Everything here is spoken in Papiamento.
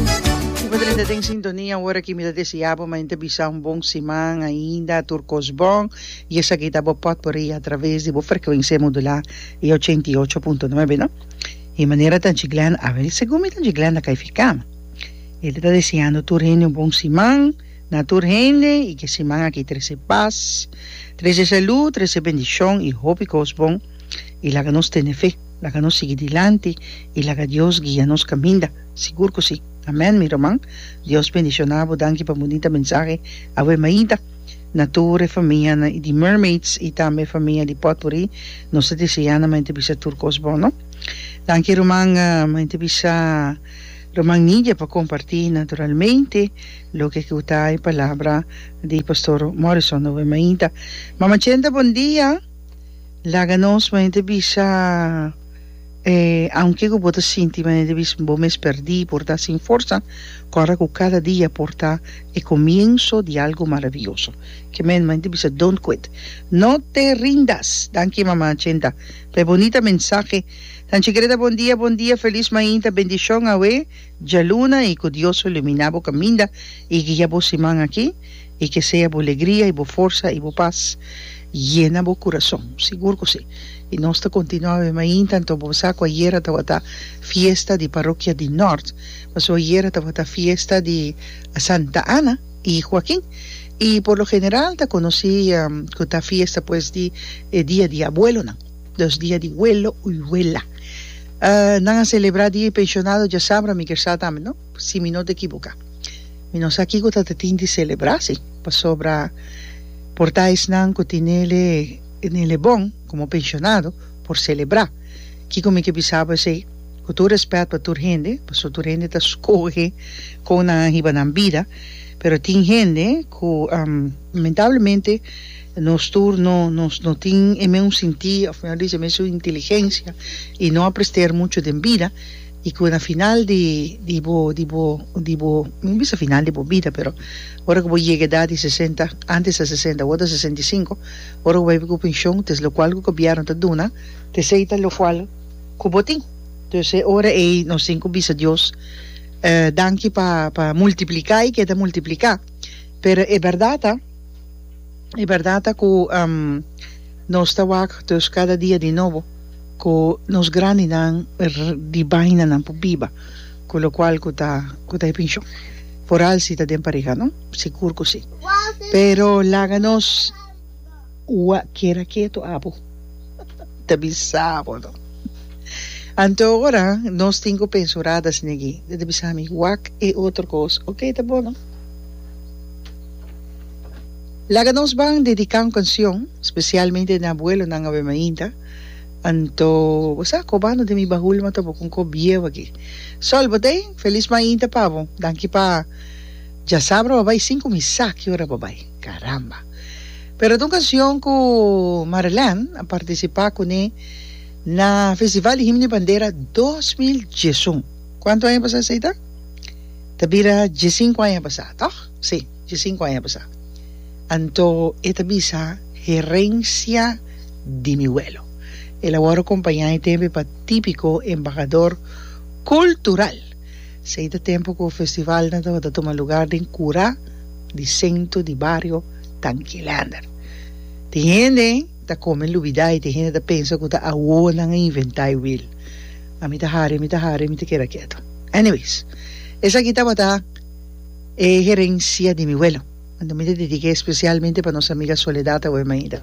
Mi ta drenta den sintonia ora aki mi ta desea bo mañana ta bisa un bon siman ainda tur kos bon y esaki ta bo potpourri a traves di bo frecuencia modula y ochenta y ocho punto nuebe no y manera ta anchi Glenda a ver segun mi ta anchi Glenda ka e ficama y ta deseando tur hende un bon siman na tur hende y ke siman aki trece pas trece salud trece bendicion y hopi kos bon y laga nos tene fe. Laga nos sigui dilanti i laga Dios guia nos kaminda. Sigur ku si. Amèn mi ruman. Dios bendishoná bo. Danki pa bunita mensahe awe mainta. Na tur e famianan i di Mermaids i tambe e famia di Potpourri nos ta deseá nan maña ta bisa tur kos bon no. Danki ruman. Maña ta bisa ruman Nidia pa kompartí naturalmente loke ku ta e palabra di Pastor Morrison awe mainta. Mama Chenta bon dia. Laga nos manera bisa e aunke ku bo ta sinti manera bisa bo mes perdí por ta sin forsa kòrda ku kada dia por ta e komienso di algu maravioso ke men manera bisa don't quit no te rindas danki mama Chenta pa e bonita mensahe Tanchi Greda bon dia bon dia felis mainta bendishon awe djaluna i ku Dios lo ilumina bo kaminda i guia bo siman aki. I ke sea bo legria i bo forsa i bo pas yena bo kurason. Sigur ku si. I nos ta kontinuá awe mainta. Anto bo sa ku ayera a tabata fiesta di parokia di Nort. Pasó ayera a tabata fiesta di Santa Ana i Huakin. I por lo general ta konosí ku ta fiesta pues di e dia di abuelonan. Dos dia di welo i wela. Nan a selebrá dia e penshonado djasabra mi kersá tambe no. Si mi no ta ekiboká. Mi no sa kiko ta ta tin di selebrá si, pasobra por ta esnan ku tin nele nele bon komo penshonado por selebrá. Kiko mi ke bisa bo esei? Ku tur rèspèt pa tur hende, paso tur hende ta skohe kon nan a hiba nan bida, pero tin hende ku lamentablemente nos tur no nos no tin e mesun sintí òf mihó dishi e mesun inteligensia i no aprester muchu den bida, Y cu na final di di bo di bo di bo mi bisa final di bo bida pero ora cu bo yega edad di sesenta antes ta sesenta awor ta sesenta y sinku ora cu bo a ybi cu pension ta es locual cu gobierno ta duna ta esey ta locual cu bo tin entonces e ora ey nos tin cu bisa Dios danki pa pa multiplica y keda multiplica pero e berdad ta. E bèrdat ta ku nos ta wak dus kada dia di nobo ku nos grandinan di bainanan por biba ku lokual ku ta ku ta e penshon foral si ta den pareha no sigur ku si pero laga nos wa keda ketu abo ta bisa bo no anto ora nos tin ku penso radas negi ta bisa mi wak e otro kos oke ta bon no. Laga nos ban dedica un cancion specialmente den abuelonan awe mainta anto bo sa cobando den mi bahul ma ta bo con cop bieu aki Sol Botey feliz mainta pa bo danki pa dja sabra bo bay sin cuminsa ki ora bo bay caramba pero ta un cancion cu Marelène a participa cune na festival di himno y bandera dos mil diesun cuanto aña pasa esey ta ta bira diesienco aña pasa toch si. dje sinku aña pasá. Anto e ta bisa, Herensia di mi welo. El a wòrdu kompañá e tempu pa típiko embahador kultural. Esei ta tempu ku festivalnan tabata tuma lugar den kura di sentro di bario Tankilander. Tin hende ta kome lubidá i tin hende ta pensa ku ta awo nan a inventá e wil. Ami ta hari, mi ta hari, mi ta keda ketu. Anyways, esaki tabata. E herencia di mi welo. Manda mi ta dedica especialmente pa nos amiga Soledad Awemaida.